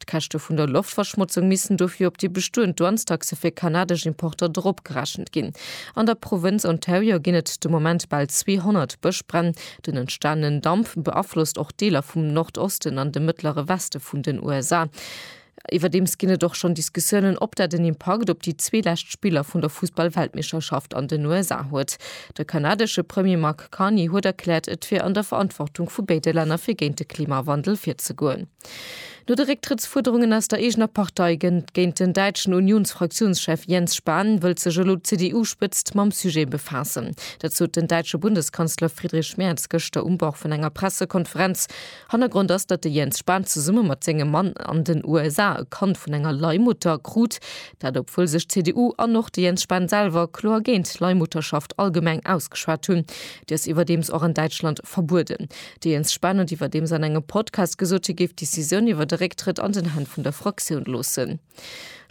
D'Käschte vun der Loftverschmotzung missten dofir op déi bestoend Douanestaxe fir kanadesch Importer dropgerechent ginn. An der Provënz Ontario ginn et de Moment bal 200 Bëschbränn. Den entstanenen Damp beaflosst och Deeler vum Nordosten an de mëttlere Weste vun den USA. Iwwerdeems ginn et och schonn Diskussiounen, ob dat en Impakt op déi zwee lescht Spiller vun der Fussball-Weltmeeschterschaft an den USA huet. De kanadesche Premier Mark Carney huet erkläert, et wier an der Verantwortung vu béide Länner fir géint de Klimawandel virzegoen. No de Récktrëttsfuerderungen aus der eegener Partei gëtt géint den däitschen Unions-Fraktiounschef Jens Spahn, wëllt sech elo d'CDU-Spëtzt mam Sujet befaassen. Dat sot den däitsche Bundeskanzler Friedrich Merz gëschter um Bord vun enger Pressekonferenz. Hannergrond ass, datt de Jens Spahn zesumme mat sengem Mann an den USA e Kand vun enger Leihmutter krut. Dat obwuel sech d'CDU an och de Jens Spahn selwer kloer géint d'Leihmutterschaft allgemeng ausgeschwat hunn. Déi ass iwwerdeems och an Däitschland verbueden. De Jens Spahn huet iwwerdeems an engem Podcast gesot, hie géif d'Decisioun iwwer de Récktrëtt an den Hänn vun der Fraktioun loossen.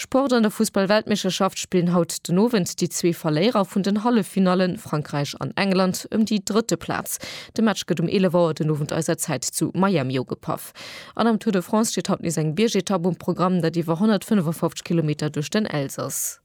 Sport An der Fussball-Weltmeeschterschaft spillen haut den Owend déi zwee Verléierer vun den Halleffinallen, Frankräich an England, ëm déi drëtte Plaz. De Match gëtt um 11 Auer den Owend eiser Zäit zu Miami ugepaff. An am Tour de France steet haut nees eng Biergetapp um Programm, dat iwwer 155 Kilometer duerch den Elsass.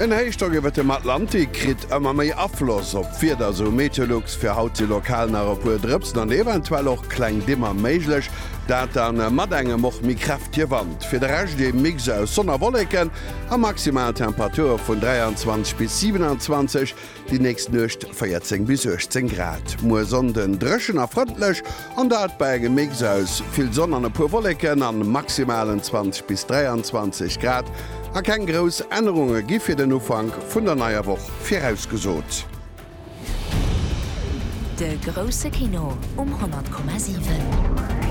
En Héichdrock iwwert dem Atlantik kritt ëmmer méi Afloss op d'Wieder, sou Meteolux. Fir haut si lokal nach e puer Drëpsen an eventuell och kleng Dimmer méiglech, dat da mat engem och méi kräftege Wand. Fir de Rescht ee Mix aus Sonn a Wolleken a maximal Temperature vun 23 bis 27. Déi nächst Nuecht 14 bis 18 Grad. Muer Sonnden dréchen a frëndlech, an dat bei engem Mix aus vill Sonn an e puer Wolleken a maximalen 20 bis 23 Grad. A keng grouss Ännerunge gi fir den Ufank vun der neier Woch virausgesot. De grousse Kino um 100,7.